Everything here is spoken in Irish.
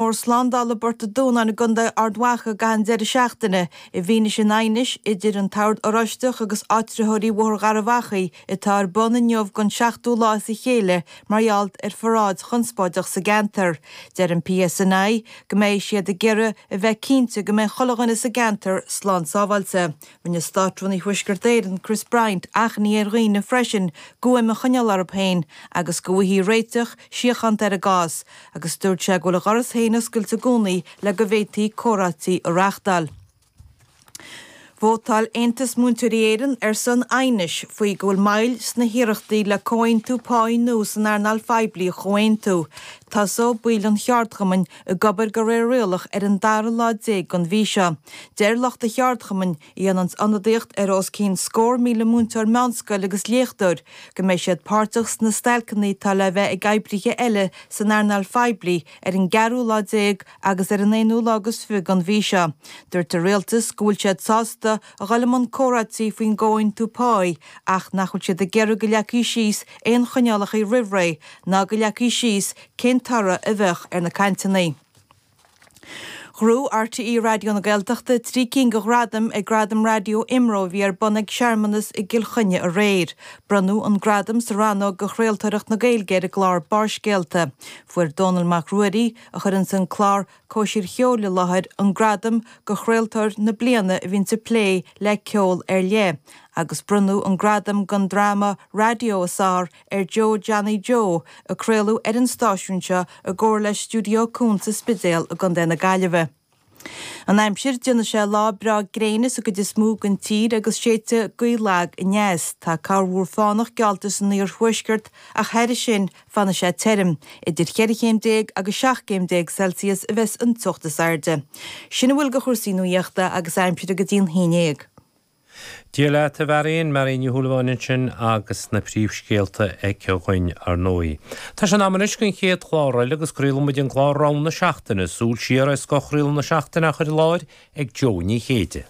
Mór slándála i bPort an Dúnáin i gContae Ard Mhacha ag caitheamh an deireadh seachtaine i bhfianaise an aighnis idir an tOird Oráistigh agus áitritheoirí Bhóthar Gharbh Achaidh atá ar bun inniu don seachtú lá as a chéile mar gheall ar pharáid chonspóideach sa gceantar. Deir an PSNI go mbeidh siad ag iarraidh a bheith cinnte go mbeidh chuile dhuine sa gceantar slán sábháilte. Rinne Státrúnaí Thuaisceart Éireann, Chris Bryant, achainí ar dhaoine freisin guaim a choinneáil orthu féin agus go bhfaighfí réiteach síochánta ar an gcás agus dúirt sé go bhfuil a dhoras féin oscailte i gcónaí le go bhféadfaí comhráití a reáchtáil. Vótáil Aontas Múinteoirí Éireann ar son aighnis faoi go bhfuil moill sna hiarrachtaí le comhaontú páí nua san earnáil phoiblí a chomhaontú. Tosóidh baill an cheardchumainn ag obair de réir rialach ar an dara lá déag den mhí seo. Deir lucht an cheardchumainn, a dhéananns ionadaíocht ar os cionn scór míle múinteoir meánscoile agus léachtóir, go mbeidh siad páirteach sna stailceanna atá le bheith ag oibrithe eile san earnáil phoiblí ar an gceathrú lá déag agus ar an aonú lá agus fiche den mhí seo. Dúirt an Rialtas go bhfuil siad sásta a dhul i mbun comhráití faoin gcomhaontú páí ach nach bhfuil siad ag iarraidh go leagfaí síos aon choinneálacha roimh ré ná go leagfaí síos cén toradh a bheadh ar na cainteanna. Ghnóthaigh RTÉ Raidió na Gaeltachta trí cinn de ghradaim ag Gradaim Raidió IMRO a bhí ar bun ag searmanas i gCill Chainnigh aréir. Bronnadh an gradam sa rannóg do chraoltóireacht na Gaeilge ar an gclár Barrscéalta. Fuair Dónall Mac Ruairí, a chuireanns an clár Cóisir Cheoil i láthair, an gradam do chraoltóir na bliana a bhíonns ag plé le ceol ar leith, agus bronnadh an gradam don dráma raidió is fearr ar Joe Johnny Joe a craoladh ar an stáisiún seo i gcomhar le Stiúideo Cuan sa Spidéal i gContae na Gaillimhe. An Aimsir, Déanfaidh sé lá breá gréine sa gcuid is mó den tír agus séidfidh gaoth lag aneas. Tá corrmhúr fánach geallta san iarthuaisceart ach thairis sin fanfaidh sé tirim. Idir cheithre chéim déag agus seacht gcéim déag Celsius a bheas an teocht is airde. Sin a bhfuil de chúrsaí nuachta agus aimsire go dtí a haon déag. Grá Dia leat a Mháirín, Máirín Ní Shúilleabháin ansin agus na príomhscéalta aici dúinn ar ndóigh. Tá sé in am anois don chéad chlár eile agus craolfaidh muid an clár Rogha na Seachtaine, súil siar ar scoth chraoladh na seachtaine á chur i láthair ag Jó Ní Chéide.